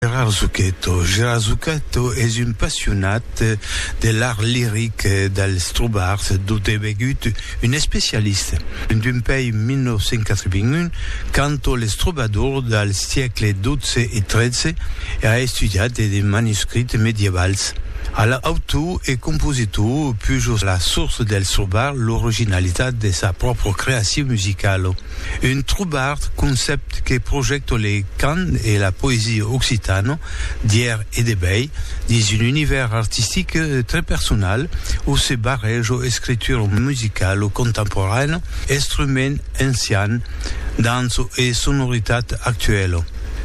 Gérard Zucchetto Gérard Zucchetto es un passionat de l'art liric del Strubart dont es vegut un especialista en dempèi 1981 canto les trobadors del siècle xii e xiii e a estudiat de de manuscrits medievals. Al autor e compositor pujo la source del Strubart l'originalitat de sa pròpra creacion musicala. Un trobard concèpt que projècto le cant e la poesia occitana d'ièr e de bèi dins un univèrs artistic tre personal o se barrèja escritura musicala contemporaina, estrument ancian, danço e sonoritat actuela.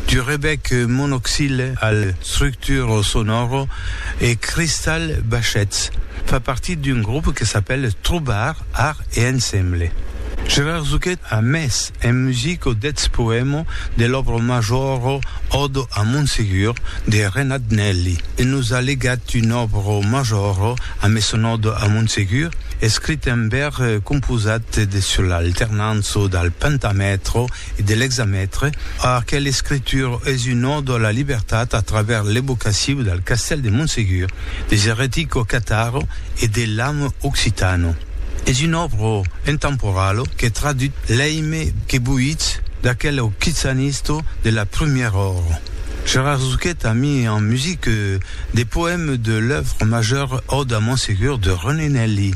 Du rebec monoxile al structura sonora e Crystal Bachets fa partit d'un grop que s'apèl Trobard. Ar e ensemble. Gerard Zuchet a mes en musico deths poemo de l'òbra majora Odo a Montsegur de Renat Nelli e nos a legat un òbra majora a mes son Odo a Montsegur, escrit en bèr composat de sur l'alternança dal pentamètra e de l'examètre, aquel escritur es un ò de la libertat a travèrs l'evocaciu del castèl de Montsegur, des eretico cataro e de l'amo occitano. Es un òbro intemporalo que tradut l'èime que boitz d'aquel occitanista de la prumièra ora. Gerard Zuchet a mis en musique de poèmes de l'œuvre majeure Òde a Montsegur de René Nelli.